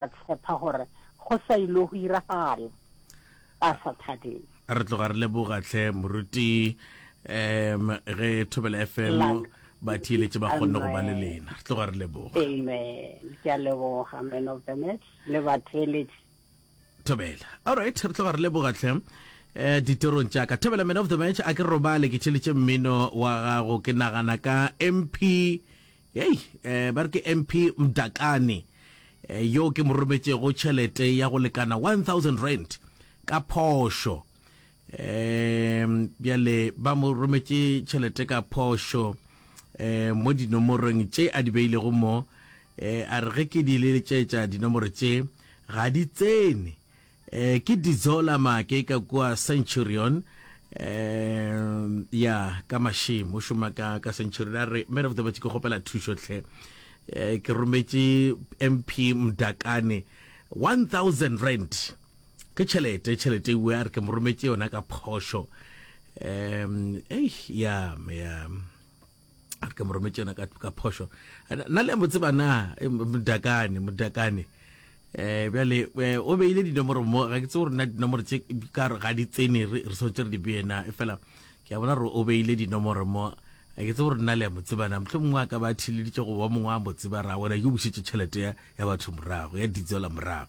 Ba tshepa gore go sa ilo go iragala, ba sa thabeng. Re tloga re leboga tlhe moruti um ge thobela fm ba thieletse ba kgonne go ba le lena re tloga re leboga amen ke a leboga man of the match le batheeletsi thobela all right re tloga re leboga tlhe eh ditorong tša ka thobela man of the match a ke robale ke tšheletse mmino wa gago ke nagana ka mp Hei, eh, ba re ke MP Mdakane eh, yo ke mo rometšego tšhelete ya go lekana 1000 rand ka phošo um bjale ba mo rometše tšhelete ka phošo um mo dinomorong tše a di beilego mo um a re ge ke di leletšetša dinomoro tše ga di tsene Eh, ke didzo la make ka kua centurion um ya ka mashim o šoma ka ka centurion a re man of the word ke kgopela thušo tlhe Eh, ke rometše mp mdakane 1000 rand ke tšhelete tšhelete ewe a re ke mo rometše yona ka phošo um ei ya ya a re ka mo rometse yona ka phošo na le a mo tseba na eh, modakane modakane eh bjale eh, o beile dinomoro mo ga ke tse gore na dinomoro tse ka re ga di tsene re sotse re di beena e fela ke a bona gore o beile dinomoro mo ga ke tse gore nna le ya mo tsebana motlho mongwe a ka ba thileditse go ba mongwe a mo tseba ra wena ke busetse tšhelete ya batho morago ya ditsela morago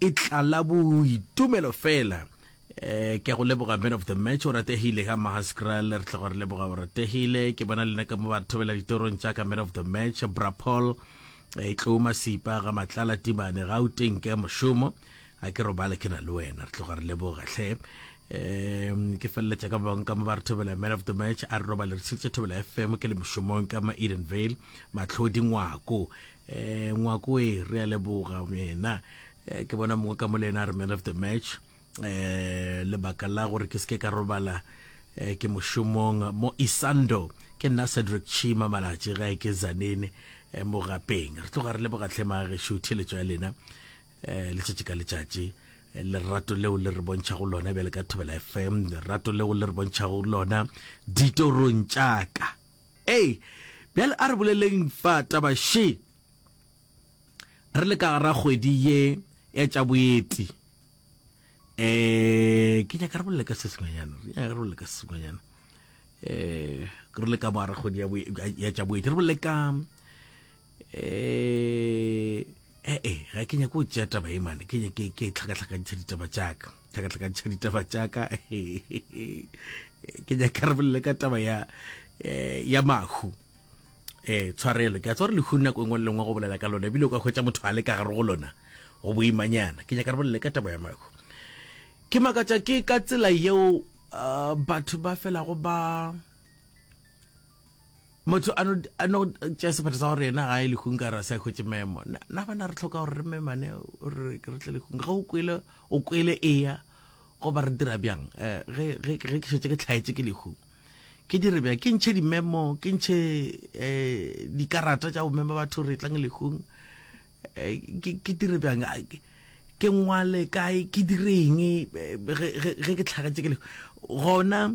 E tlala boitumelo fela. Eh ke a go leboga man of the match o rategile ga Mahaskral re tloga re leboga o rategile ke bona lena ka mo ba re thobela ditorong tša ka man of the match bra Paul e tlo masipa ga matlala timane ga o teng ke mošomo a ke robale ke na le wena re tloga re leboga hle um ke feleletša ka bang ka mo ba re thobela man of the match a re robale re tsheditše thobela fm ke le mošomong ka ma edenvale matlhodi ngwako Eh, ngwako e re a leboga mena eh, ke bona mongwe ka mo le ena a re man of the match eh lebaka la gore ke seke ka robala eh, ke mošomong mo isando ke nna cedric chima malatši gae ke zanene eh, mo gapeng re tloga re leboga tlhema gešo theletso ya lena eh, letšatši ka letšatši eh, lerato leo le re bontšhago lona bjale ka thobela fm lerato leo le re bontšhago lona ditorong tšaka Ee, bjale a re boleleng fa taba še re le ka gara kgwedi ye ya tša boeti. Eh, ke nyaka re bolele ka se sengwenyana, re nyaka re bolele ka se sengwenyana. Eh, re le ka mo gara kgwedi ya tša boeti, re bolele ka ee eh, eh, ga ke nyako o tšea taba e mane ke nyake ke tlhakatlhakantšha ditaba tšaka tlhakatlhakantšha ditaba tšaka ke nyaka re bolele ka taba ya eh, ya mahu eh tshwarelo ke a tswa re lehu nako engwe lengwe go bolela ka lona ebile o ka hwetša motho a le ka gare go lona go boimanyana ke nyaka re bolele ka taba ya mahu ke makatša ke ka tsela yeo uh, batho ba felago ba Motho a no, a no tšea sephetho sa gore yena ga e lehung ka re a se a hwetše memo. Na, na bana re tlhoka gore re memane gore ke re tle lehung. Ge o kwele, o kwele eya goba re dira bjang eh, ge, ge, ge ke šetše ke tlhaetše ke lehu ke dire bjang ke ntšhe dimemo ke ntšhe eh, dikarata tša go mema batho re tlang lehung eh, ke, ke dire bjang Ah, ke- ke ngwale kae ke direng eh, ge ge- ge ke tlhagetše ke lehu gona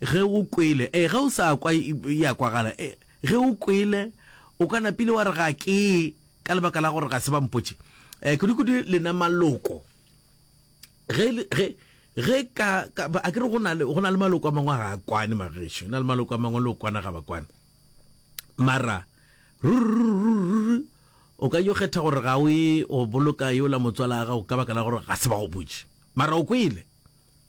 Ge o kwele, ee, ge o sa kwa, e a kwagala, ee, ge o kwele, o ka napile wa re, Ga ke ye, ka lebaka la gore ga se ba mpotše. Ee, kudukudu lena maloko. Ge, ge, ge ka, ka, a ke re go na le, go na le maloko a mangwe a ga a kwane, magešo, na le maloko a mangwe le o kwana ga ba kwane. Mara, ruri-ruri-ruri-ruri, o ka yo kgetha gore ga o ye go boloka yola motswala a gago ka baka la gore ga se ba go botše. Mara o kwele.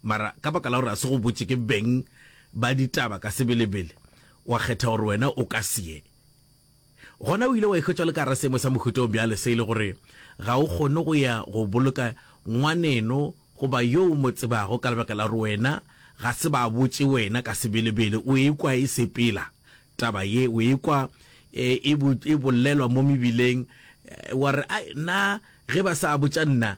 Mara ka baka la gore a se go botše ke beng ba ditaba ka sebelebele, wa kgetha gore wena o ka se ye. Gona o ile wa ikhwetša o le ka gare seemo sa mohuta wo bjale se e le gore ga o kgone go ya go boloka ngwaneno goba yo o mo tsebago ka lebaka la gore wena ga se ba botše wena ka sebelebele. O ekwa e sepela taba ye, o ekwa e bolelwa mo mebileng, wa re, Ai, nna ge ba sa botša nna.